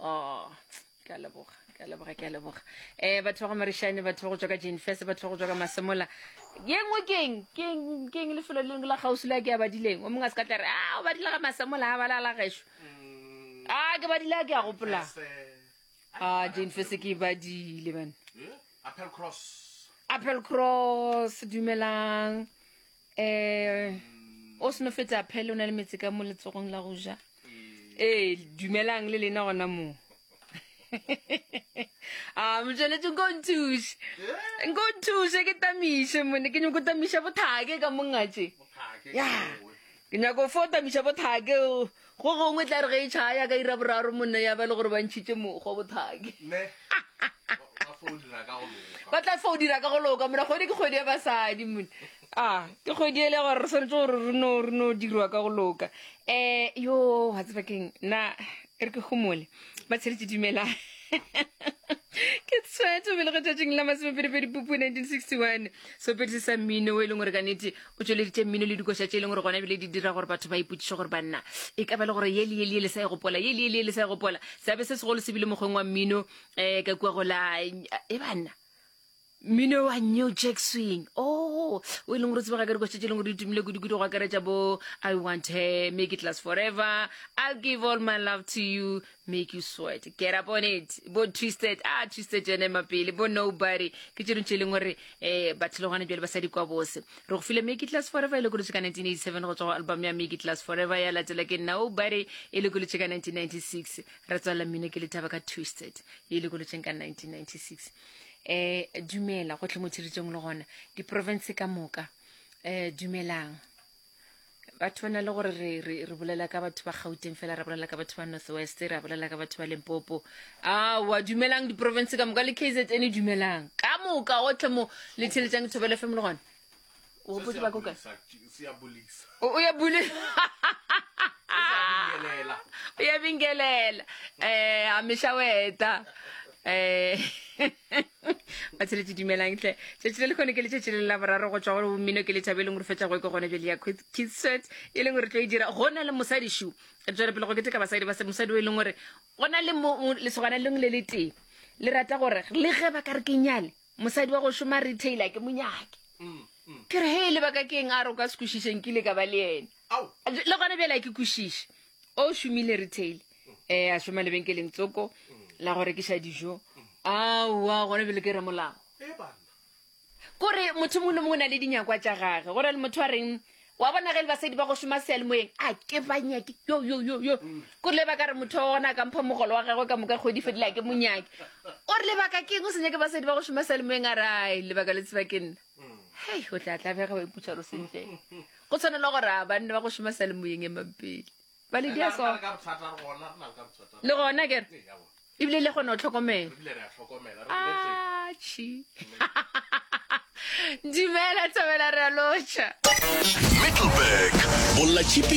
Oh, ke a leboga ke a leboga ke a leboga um batho ba go marišane batho ba go tswa ka jenfes batho ba go tswa ka masemola ye nngwe keng keng keng lefelo le leng la kgauswi le a ke a badileng o mongwe a se ka tla re a o badile ga masemola a bala la gešo a ke badile a ke a gopola a jenfes ke e badile bana apple cross dumelang um o seno fetsa phele o na le metse ka mo letsogong la go ja ee dumelang le lena gona moo a ah, motsweletse nko nthuse nko nthuse ke tamiše mone ke nyako tamiša bothake ka mongatše ya ke nyako fo tamiša bothake Go gongwe tla re ge e tšhaa ya ka ira boraro monna ya ba le gore ba ntšhitše mokgwa bothaki. Ba tla fa o dira ka go loka mona kgwedi ke kgwedi ya basadi mone. A ke kgwedi ele ya gore re swanetse gore re no re no dirwa ka go loka. Eh yo wa tseba keng na e re ke gomole ba tsheletše dumela. ke tshwetso belegetšatšing la masomepedipedi pupu 1961 sopedi se sa mmino o e leng gore ka nete o tšweleditše mmino le dikoša tše e leng gore gona ebile di dira gore batho ba ipotšiše gore banna e ka ba le gore ye le ye le ye le sa e gopola ye le ye le ye le sa e gopola seabe se segolo se bile mokgweng wa mmino um ka kua go la e banna mmino wa new jack swing o oh, o e leng gore tsebega ka dikoša tše e leng gore di tumile kudu-kudu go akaretša bo i want her make it last forever i'll give all my love to you make you sweat get up on it bo twisted a ah, twisted jene mapele bo nobody ke tšeno tše leng gore um batho le gona jale ba sa di kwa bose re go file make class forever e le kolotse ka 1987 go tswa go album ya make class forever ya latela ke nobody e le kolotse ka 1996 re tswalela mmino ke lethaba ka twisted e le kolotseng ka 1996 um dumela go tlhe mo tshiritsong le gona diprovince ka moka um dumelang batho ba na le gore re re re bolela ka batho ba gauteng fela ra bolela ka batho ba north west ra bolela ka batho ba lempopo aowa dumelang diporofense ka moka le k z n dumelang ka moka otlhe mo le theletšang thobele fm le gona o gopotse ba kokae o o ya bule o ya bingelela um a mešaweta um ba tsheletše dumelang tle tšatši le lekgone ke letšatši le la boraro go tswa go mmino ke lethabo e leng gore fetša go ke gone bjale ya kitswet e leng gore tlo e dira go na le mosadi shu re tswele pele go keteka basadi ba mosadi o e leng gore go na le lesogana leng le le tee le rata gore le ge ba ka re ke nyale mosadi wa go šoma retailer ke monyake mm, mm. ke re he lebaka ke eng a re o ka sekwešišeng ke ile ka ba le ena Ao! Le gona bjale a ke kwešiše. O šomile retail. Eh, a šoma lebenkeleng tsoko la go rekiša dijo. Aowa, gona bjale ke ramolago. E banna. Kore motho mongwe le mongwe o na le dinyakwa tša gage. Go na le motho a reng, wa bona ge le basadi ba go šoma seyalemoyeng, a ke ba nyake, yo, yo, yo, yo. Kore le baka re motho wa gona a ka mpha mogolo wa gagwe ka moka kgwedi fedile a ke mo nyake. O re lebaka ke eng o se nyake basadi ba go šoma seyalemoyeng a re, ai, lebaka le tseba ke nna. hei o tla tlabega wa iputsa gore sentle go tshwanela gore a banne ba go šoma sa le moyeng e mampele ba le dia so le gona kere ebile le kgone go tlhokomela achi dumela tshabela re a lotšha middleburg bolla chipi